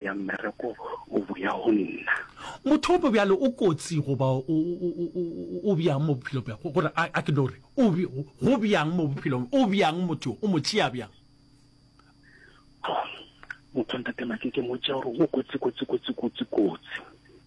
ya mmereko o boya go nna. Motho ope bjale o kotsi goba o, o, o, o, o bjang mo bophelo bja, go- gore a, a ke no re, o, bj- go, go bjang mo bophelong, o bjang motho yo, o mo tšea bjang? Motho wa ntate Maki ke mo tšea gore o kotsi, kotsi, kotsi, kotsi, kotsi.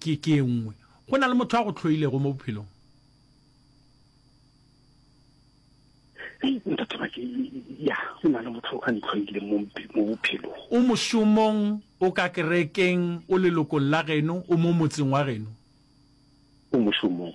ke ke e nngwe. Go na le motho a go tlhoilego mo bophelong? ya go na le motho a ntlhoile mo bophelong o mošomong o ka kerekeng o lelokong la geno o mo motseng wa geno o mošomong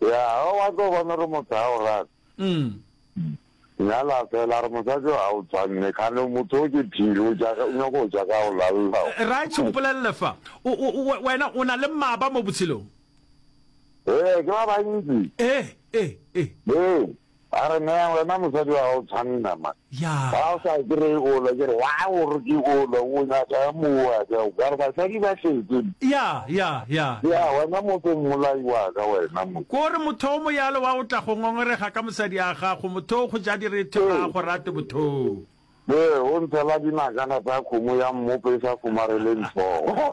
Ya, ga wa tlo bona gore motho ga o rate. Nyala fela, a re mosadi o ga o tshwanne, kgane motho o ke phiri, o nyaka go ja ka o lalelao. Rage, mpolelele fa, wena o na le maba mo botshelong? Ee, ke ba bantsi. Ee, ee, ee. Ee, A re, Nea, wena mosadi wa gago tshwanna ma. Ya. Ga o sa kry o lo, ke re, wa go re ke o lo, o nyaka mowa ka o kare basadi ba tletse. Ya, ya, ya. Ya, wena motho mmolai wa ka wena mo. Ko re motho o moyalo wa go tla go ngongorega ka mosadi a gago, motho o go ja direthe ga a go rate motho. Be o ntshela dinakana tsa kgomo ya mmopo e sa kgomareleng tlhogo.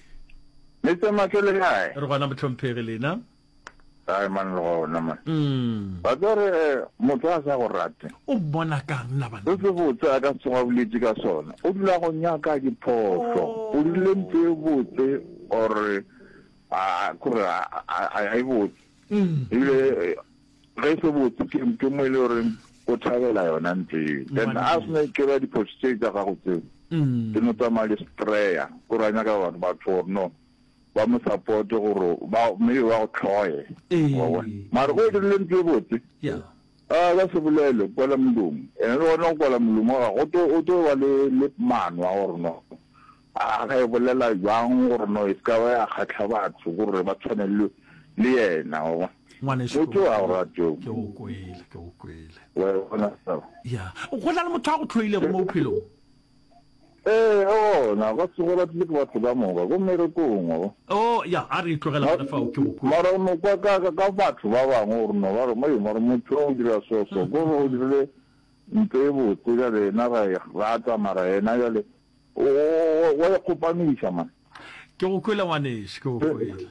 Mister Matle le kae? Re gona mohlomphegi lena. Kae man le gona man. Mm. Ba tlo re eh, motho a sa go rate. O mmona kang na bana? Se botse a ka se tsoga boletse ka sona. O dula go nyaka diphoso. O dirile ntho e botse or a kore a a e botse. Mm. Ile Ge se botse ke ke mo e le gore o thabela yona ntlo eo. Then a se ne ke ba diphoso tse tsa gago tseo. Ke no tsamaya le Straya. O ra nyaka batho batho gore no ba mo support gore ba maybe ba go tlhoye. Wa bona. Mara go dirile ntlo e botse. Yeah. A ba se bolele kwala molomo. Ene le gona go kwala molomo ga go to o to ba le le manwa gore no. A re e bolela bjang gore no e se ka ba ya kgahla batho gore ba tshwane le, le yena? Wa bona? Ngwanešu, ke Botšo a o kwele. rate. Ke go kwele, ke go kwele. Wa e bona taba? Ya. Go na le motho a go hloilego mo bophelong? Ee, eona. Ba se go ratile ke batho ka moka, ko mmerekong, wa bona. Oo, ya, a re e tlogele gona fao. Ke go kwele. Mara o no kwa ka, ka, ka batho ba bangwe gore no ba re, Mei, mara motho o dira so, so. Ko re o dirile ntho e botse, bjale yena ra e rata, mara yena bjale. O, wa ikgopamiša, man. Ke go kwele, ngwanešu, ke go kwele.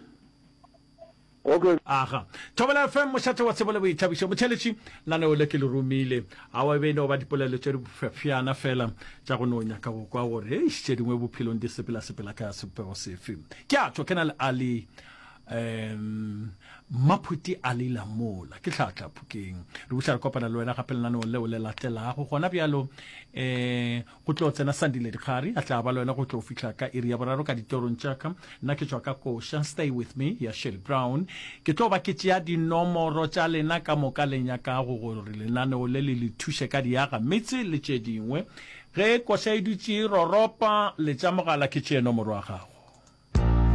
Okay. Aga. Thobela FM, mošate wa tsebo le boithabišo. Motheletši, laneo le ke le romile. Awa e be e no ba dipolelo tše dibofefjana fela tša go no nyaka go kwa gore, eish, tše dingwe bophelong di sepelasepela ka sebopego sefe. Ke a tšwa ke na le Ali um Maphuti Ali Lamola, ke tlhatla phukeng. Re buša re kopana le wena gape lenaneong leo le latelago gona bjalo. um Go tlo tsena Sandi Ledikgari, a tla ba le wena go tlo fihla ka iri ya boraro ka ditorong tša ka. Nna ke tšwa ka koša Stay With Me ya Shelly Brown. Ke tlo ba ke tšea dinomoro tša lena ka moka le nyakago gore lenaneo le le le thuše ka diaga metse le tše dingwe. Ge koša e dutše e roropa, letša mogala ke tšee nomoro ya gago.